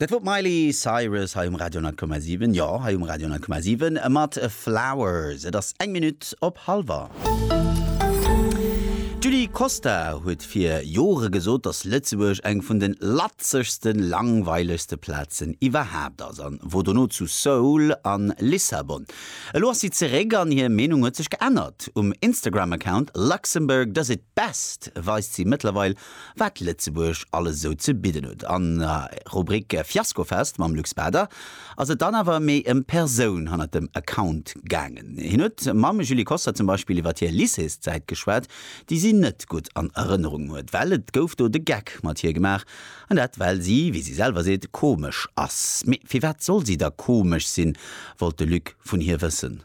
Dat wor d'Miley Cyrus hei um Radio 10,7. Jo, hei um Radio 10,7 mat Flowers. Et ass eng Minutt op halwer. D'Julie Costa huet fir Jore gesot, datt Lëtzebuerg eng vun den latzegste, langweilegste Plazen iwwerhaapt ass an wor dono zu Seoul an Lissabon. Elo ass si zeréck an hir Meenung huet sech geännert. Um Instagram-Account Luxembourg does it best weist si mëttlerweil wat Lëtzebuerg alles esou ze bidden huet. An der Rubrik Fiaskofest mam Luc Spader ass et dann awer méi ëm d'Persoun hannert dem Account gaangen. Hien huet mam Julie Koster zum Beispill iwwert hir Lycéeszäit geschwat, déi si net gutt an Erënnerung huet, well et gouf do de Geck mat hir gemaach. An dat well si, wéi si selwer seet, komesch ass. Mee firwat soll si da komesch sinn, wollt de Luc vun hir wëssen.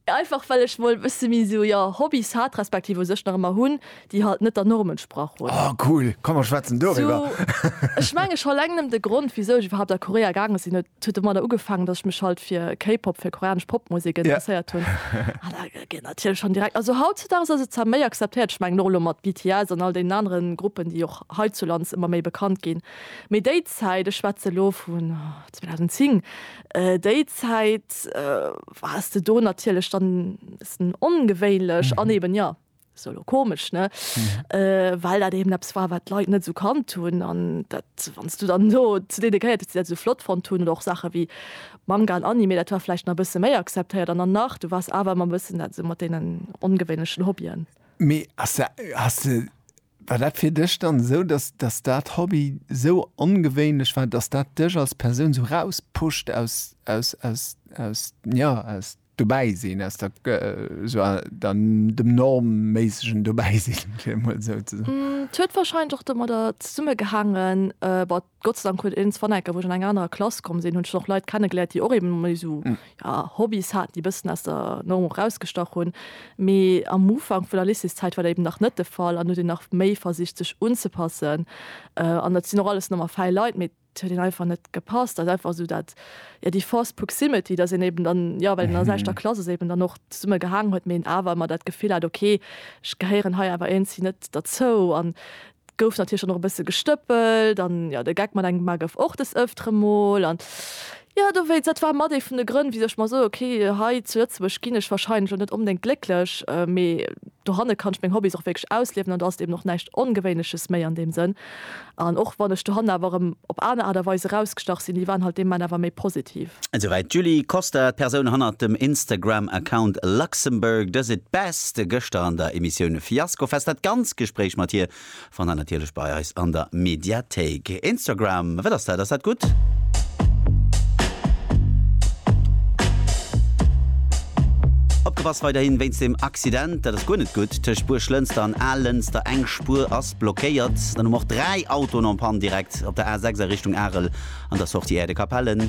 Einfach well ech mol e bësse méi esou jo Hobbys hat, respektiv u sech nach ëmmer hunn, déi halt net der Norm entsprach hunn. Oh cool, komm mer schwätzen doriwwer. Ech mengen scho eleng nëmmen de Grond wisou ech iwwerhaapt a Korea gaange sinn, huet huet domadder ugefaangen, dass ech mech halt fir K-Pop, fir koreanesch Popmusek interesséiert hunn. An da geet natierlech schonn direkt, also hautzudags ass et zwar méi akzeptéiert, ech mengen och elo mat BTS an all deenen anere Gruppen, déi och heizulands ëmmer méi bekannt ginn, mee déi Zäit, ech schwätze elo vun 2010, Déi Zäit wars de do natierlech dann e bëssen ongewéinlech an eben, jo, esou elo komesch, ne, well dat eben eppes war, wat d'Leit net esou kannt hunn. An dat, wann s du dann do zu deene gehéiert hues, déi dat esou flott fonnt hunn, oder och Saache wéi Manga an Anime, dat war vläicht nach e bësse méi akzeptéiert. An dann nach, du wars awer ëmmer e bëssen dat esou mat deenen ongewéinlechen Hobbyen. Mee ass, has de War dat fir dech dann esou, dass dass dat Hobby esou ongewéinlech war, dass dat dech als Persoun esou rauspusht aus aus aus aus jo aus Dobäisinn, aus der esou der dem normméissegen Dobäisinn, fir emol esou ze soen? Et huet warscheinlech och domadder zesummegehaangen, Gott sei Dank huet een zwar enker, wou ech an eng anerer Klass komm sinn, hunn ech och Leit kennegeléiert, déi och eben méi esou, ja, Hobbys haten, déi e bëssen aus der Norm och erausgestach hunn. Mee am Ufank vun der Lycéeszäit war dat eben nach net de Fall an huet een nach méi versicht, sech unzepassen. An et sinn och alles normal fäi Leit, mee et huet een einfach net gepasst. Ass einfach esou dat, ja, déi forced proximity, dass een eben dann, ja, well een an der selwechter Klass ass, eben dann och zesumme gehaangen huet, mee een awer ëmmer dat Gefill hat, okay, ech gehéieren hei awer iergendwéi net derzou. An Gouf natierlech dann och e bësse gestëppelt an jo, de Geck mat engem Mar gouf och des Ëftere mol an jo, dowéinst, dat war mat ee vun de Grënn, wisou ech mer soe, okay, hei zu Lëtzebuerg ginn ech warscheinlech och net onbedéngt glécklech, mee dohanne kann ech meng Hobbys och wierklech ausliewen an do ass et eben och näischt Ongewéinleches méi an deem Sënn. An och wann ech dohanne awer erëm op aner Aart a Weis erausgestach sinn, déi waren halt deem Moment awer méi positiv. Esouwäit d'Julie Koster, d'Persoun hannert dem Instagram-Account Luxembourg does it best, gëschter an der Emissioun Fiaskofest. Dat ganz Gespréich mat hir fannt der natierlech bei eis an der Mediathéik. Instagram, wat ass dat? Ass dat gutt? Opgepasst weiderhin wéinst dem Accident, dat ass guer net gutt, tëscht Buerglënster an Aallënster. Eng Spuer ass blockéiert. Dann hu mer och dräi Autoen en panne direkt op der A6 a Richtung Arel an der Sortie Aire de Capellen.